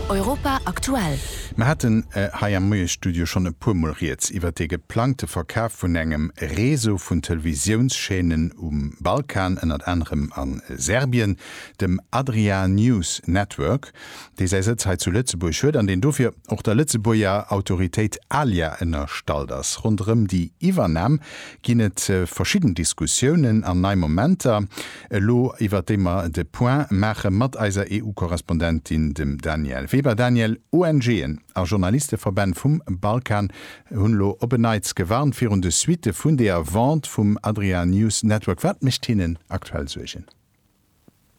Europa aktuell. Mer haten hei am Moiesstudio schonn e puer Mol Rieds iwwert dee geplangte Verkaf vun engem Réseau vun Televisiounschaînen um Balkan, ënnert anerem a Serbien, dem Adria News Network, dee säi Sëtz hei zu Lëtzebuerg huet an deen dofir och der Lëtzebuerger Autoritéit ALIA ënnerstallt ass. Ronderëm déi Iwwernam ginn et verschidden Diskussiounen an nei Momenter. elo iwwert déi mer de Point maache mat eiser EU-Korrespondentin, dem Danièle Weber. Danièle, ONGen a Journalisteverbänn vum Balkan hunn elo op en Neits gewarnt virun de Suitte vun deeër Vente vum Adria News Network. Wat mécht hinnen aktuell Suergen?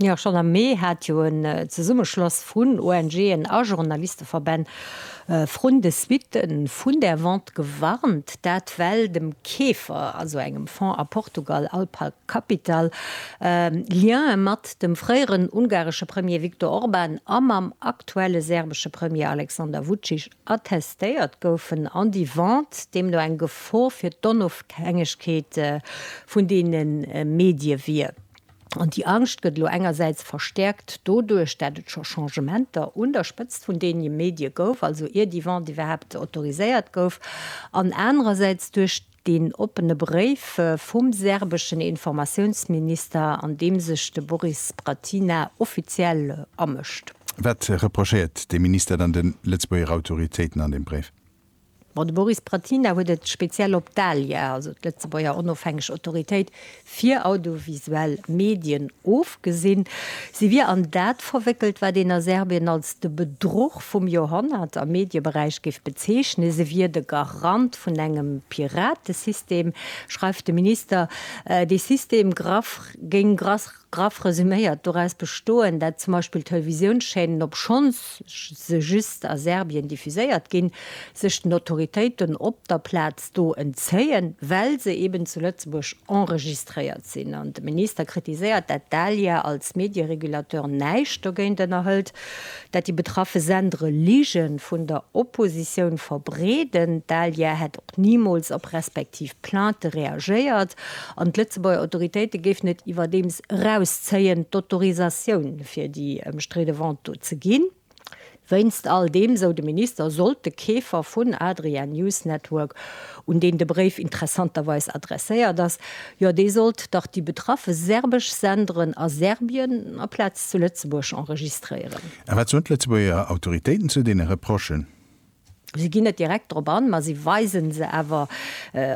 Jo, schonn am Mee hat jo en Zesummeschloss vun ONGen a Journalisteverbänn Vrun de Suitten vun där Vente gewarnt, dat well dem Keefer, also engem Fonds a Portugal, Alpa Capital, Liene mat dem fréieren ungaresche Premier Viktor Orban a mam aktuelle serbesche Premier Alexander Vucic attestéiert goufen an déi Vente deemno eng Gefor fir d'Onofhängegkeet vun deene Medie wier. An déi Angscht gëtt elo engersäits verstäerkt doduerch, dat et scho Changementer un der Spëtzt vun deene Medie gouf, also ier déi Vente iwwerhaapt autoriséiert gouf, an anerersäits duerch deen oppene Bréif vum serbeschen Informatiounsminister, an deem sech de Boris Bratina offiziell amëscht. Wat reprochéiert de Minister dann de Lëtzebuerger Autoritéiten an deem Bréif? Bon, de Boris Bratina huet et speziell op d'ALIA, also d'Lëtzebuerger onofhängeg Autoritéit fir audiovisuell Medien, ofgesinn. Si wier an dat verwéckelt, wat een a Serbien als de Bedruch vum Joerhonnert am Medieberäich géif bezeechnen. Se wier de Garant vun engem Piratesystem, schreift de Minister. Dee System graff géing grass. Graff resuméiert, doraus bestoen, dat zum Beispill Televisiounschaînen, obschonns se just a Serbien diffuséiert ginn, sech den Autoritéiten op der Plaz do entzéien, well se eben zu Lëtzebuerg enregistréiert sinn. An de Minister kritiséiert, dat d'ALIA als Medieregulateur näischt dogéint ënnerhëlt, dat déi betraffe Sendere Lige vun der Oppositioun verbreeden. D'ALIA hätt och nimools op respektiv Plainte reagéiert An d'Lëtzebuerger Autoritéite géifen et iwwerdeems erauszéien, d'Autorisatioun fir déi ëmstridde Vente do ze ginn. Wéinst all deem, esou de Minister, sollt de Keefer vun Adria News Network, un deen de Bréif interessanterweis adresséiert ass, jo dee sollt dach déi betraffe serbesch Senderen a Serbien aplaz zu Lëtzebuerg enregistréieren. A wat soen d'Lëtzebuerger Autoritéiten zu deene Reprochen? Si ginn net direkt drop an, ma si weisen se awer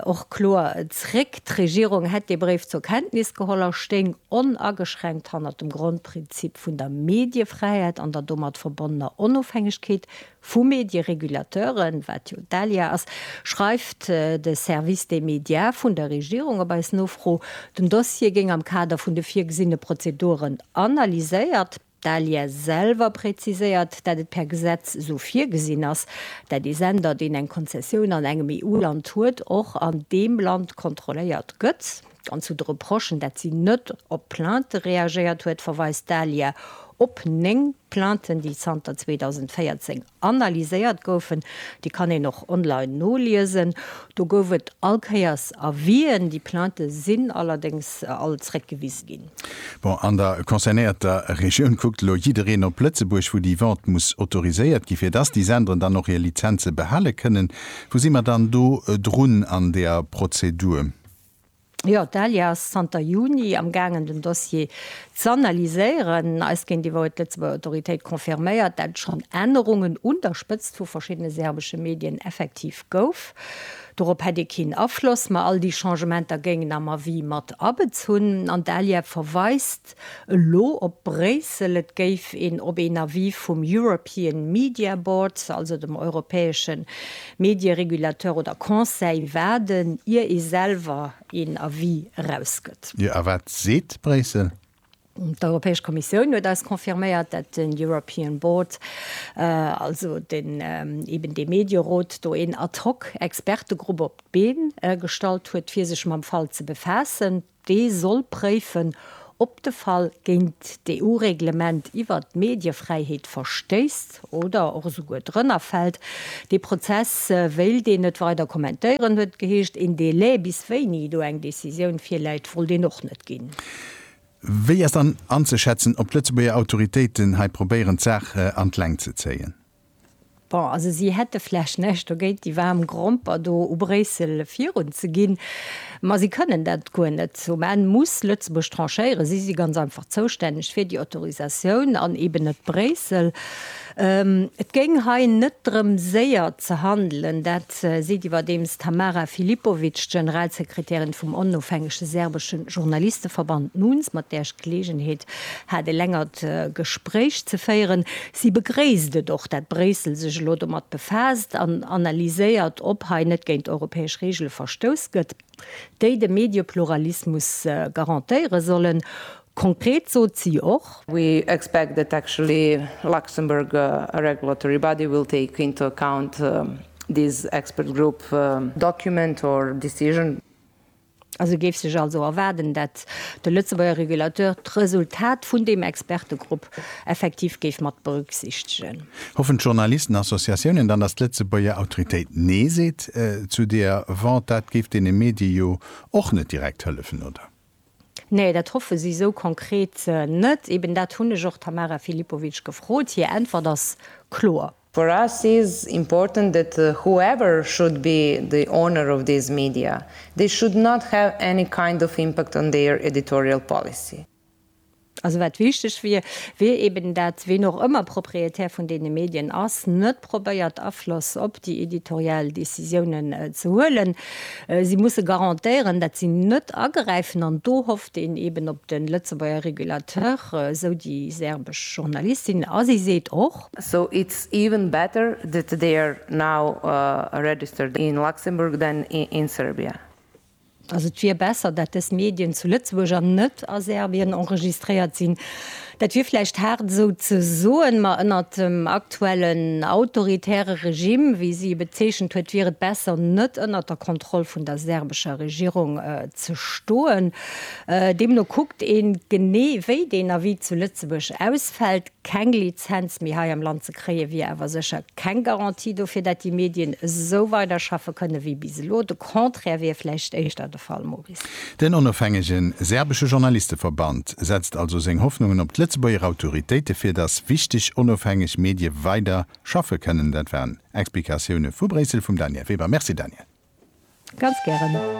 och kloer zréck. D'Regierung hätt dee Bréif zur Kenntnis geholl a stéing onageschränkt hannert dem Grondprinzip vun der Mediefräiheet an der domat verbonnener Onofhängegkeet vu Medieregulateuren, wat jo d'ALIA ass, schreift de Service des médias vun der Regierung op eis Nofro. Den Dossier géing am Kader vun de virgesinne Prozeduren analyséiert. D'ALIA selwer präziséiert, dat et per Gesetz esou virgesinn ass, dat ee Sender, deen eng Konzessioun an engem EU-Land huet, och an deem Land kontrolléiert gëtt. An zu de Reprochen, dat si net op d'Plainte reagéiert huet, verweist d'ALIA op néng Plainten, déi zanter 2014 analyséiert goufen, déi kann een och online noliesen. Do gouf et all Kéiers Avisen, déi Plainte sinn allerdéngs all zréckgewise ginn. Bon, an der concernéierter Regioun kuckt elo jiddereen op Lëtzebuerg, wou déi Vente muss autoriséiert ginn, fir dass déi Senderen dann och hir Lizenze behale kënnen. Wou si mer dann do drun an där Prozedur? Jo, d'ALIA ass zanter Juni am gaangen den Dossier z'analyséieren. Eis géintiwwer huet d'Lëtzebuerger Autoritéit confirméiert, dat et schonn Ännerungen un der Spëtzt vu verschiddene serbesche Medien effektiv gouf. Dorop hätt ee keen Afloss, ma all déi Changementer géingen am Avis mat abezunn. An d'ALIA verweist Elo op Bréissel, et géif een op een Avis vum European Media Board, also dem europäesche Medieregulateur oder Conseil, waarden, ier ee selwer een Avis erausgëtt. Jo, a wat seet Bréissel? D'Europäesch Kommissioun huet eis confirméiert, dat den European Board, also den eben dee Medierot do een ad hoc Expertegrupp op d'Been gestallt huet, fir sech mam Fall ze befaassen. Dee soll préifen, ob de Fall géint d'EU-Reglement iwwert d'Mediefräiheet verstéisst oder och esouguer drënner fält. Dee Prozess wéilt een net weider kommentéieren, huet et geheescht. Een Delai, bis wéini do eng Decisioun virläit, wollt een och net ginn. Wéi ass dann anzeschätzen, ob d'Lëtzebuerger Autoritéiten hei probéieren, d'Saach an d'Längt ze zéien? Bon, also si hätte vläch näischt dogéint, déi waarm Gromper do u Bréissel virun ze ginn, ma si kënnen dat guer net. Um Enn muss Lëtzebuerg tranchéieren. Si si ganz einfach zoustänneg fir déi Autorisatioun an eeben net Bréissel. Et géing hei net drëm séier ze handelen, dat seet iwwerdeems d'Tamara Filipovic, d'Generalsekretärin vum onofhängege serbesche Journalisteverband NUNS, mat där ech d'Geleegenheet hat, e längert Gespréich ze féieren. Si begréisst et och, dat Bréissel sech elo domat befaasst an analyséiert, ob hei net géint europäesch Reegele verstouss gëtt, déi de Mediepluralismus garantéiere sollen. Konkret sot si och. We expect that actually Luxembourg regulatory body will take into account this expert group document or decision. An e géif sech also erwaarden, datt de Lëtzebuerger Regulateur d'Resultat vun deem Expertegrupp effektiv géif mat berücksichtegen. Hoffen d'Journalistenassociatiounen dann, datt d'Lëtzebuerger Autoritéit Nee seet zu deeër Vente? Dat géif deene Medie jo och net direkt hëllefen, oder? Nee, dat hoffe si esou konkret net. Eben dat hunn ech och d'Tamara Filipovic gefrot. Hir Äntwert ass kloer. For us is important that whoever should be the owner of these media, they should not have any kind of impact on their editorial policy. Also wat wichteg wier, wier eben dat ween och ëmmer Propriétaire vun deene Medien ass, net probéiert Afloss op déi editorial Décisiounen ze huelen. Si musse garantéieren, dat si net agräifen an do hofft een eben op de Lëtzebuerger Regulateur, esou déi serbesch Journalistin. A si seet och. So it's even better that they are now registered in Luxembourg than in Serbia. Also et wier besser, dat dës Medien zu Lëtzebuerg an net a Serbien enregistréiert sinn. Dat wier vläicht haart esou ze soen, ma ënnert dem aktuellen autoritäre Regime, wéi si e bezeechent huet, wier et besser net ënnert der Kontroll vun der serbescher Regierung ze stoen. Deemno kuckt ee genee wéi deen Avis zu Lëtzebuerg ausfält. Keng Lizenz méi hei am Land ze kréie wier awer sécher keng Garantie dofir, dat déi Medien esou weiderschaffe kënne wéi bis elo. De Contraire wier vläicht éischter de Fall, Maurice. Den onofhängege serbesche Journalisteverband setzt also seng Hoffnungen op d'Lëtzebuerger Autoritéite fir datt wichteg onofhängeg Medie weider schaffe kënnen. Dat waren Explikatioune vu Bréissel vum Danièle Weber. Merci Danièle. Ganz gären.